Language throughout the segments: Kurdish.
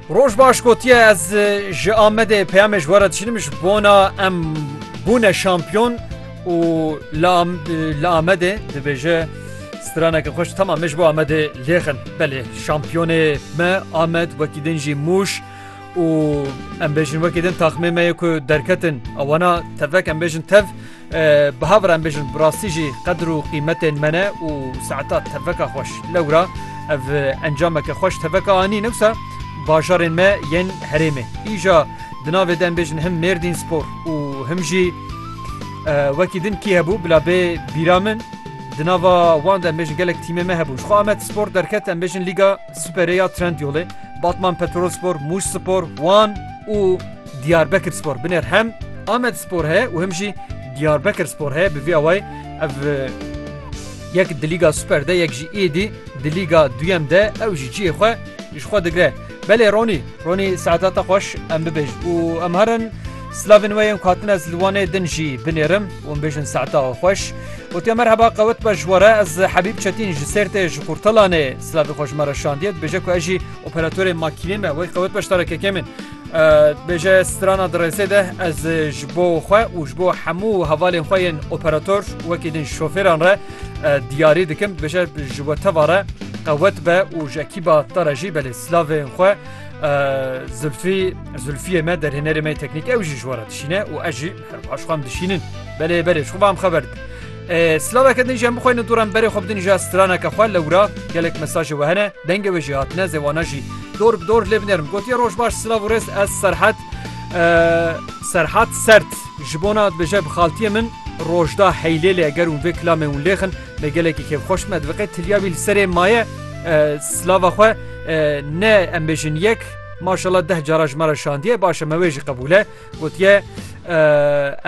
Roj baş gotiye ez ji Amedê peyamê ji were dişînim ji bona em bûne şampiyon û li Amedê dibêje straneke xweş tema min ji bo Amedê lêxin belê şampiyonê me Amed wekî din jî mûş û em bêjin wekî din taxmê me yê ku derketin ewana tevek em bêjin tev Bi havre em bêjin bi rastî jî qedir û qîmetên me ne û saeta teveka xweş lewra ev encameke xweş teveka anî newsa bajarên me yên herêmê îja di navê de em bêjin him mêrdîn spor û him jî wekî din kî hebû bila bê bîra min di nava wan de em bêjin gelek tîmê me hebû ji xwe amet spor derket em bêjin lîga Superêya Trendyolê, Batman Petrolspor, Mûşspor, Wan û Diyarbekirspor binêr hem Amedspor heye û him jî Diyarbekirspor heye bi vî awayî ev yek di Lîga Super de yek jî êdî di Lîga duyem de ew jî cihê xwe ji xwe digre. Belê Ronî, Ronî saetata xweş em bibêj û em herin Slavên we yên ku hatine ez li Wanê din jî binêrim û bêjin saeta xweş. Gotiye merheba qewet be ji we re ez Hebîb Çetîn ji Sêrtê ji Qurtalanê silavê xwe ji me re şandiye dibêje ku ez jî operatorê makînê me wey qewet be ji te re kekê min. Dibêje strana di rêzê de ez ji bo xwe û ji bo hemû hevalên xwe yên operator wekî din şofêran re diyarî dikim dibêje ji we teva re qewet be û ji ekîba te re jî belê silavên xwe Zilfî Zilfiyê me derhênerê me teknîk ew jî ji wara dişîne û ez jî herbaş xwam dişînin belê berê xu bam xeber din. Slaveke din jî em bixweyne doran berê xwe bidin ja straneke xwe lewra gelek mesajê we hene dengê we jî hatine zêwana jî dor bi dor lê binerim gotiye roj baş silav û rêz ez serhet serhat sert ji bona bêje bi xaltiyê min rojda heylê lê eger û vê kilamê hûn lêxin Me gelekî kêfxweş me diviqe tilya wî li serê maye silava xwe ne em bêjin yek maşala deh cara ji me re şandiye baş e me wê jî qebûl e gotiye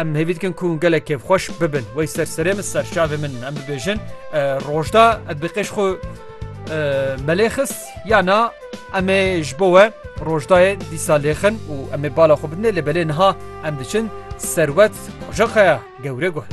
em hêvî dikin ku gelek kêfxweş bibin wey ser serê min ser çavê min em bibêjin rojda em bi qêş xwe melê xist ya na em ê ji bo we rojdayê dîsa lêxin û em ê bala xwe bidinê lê belê niha em diçin serwet qojaqeya gewre guh.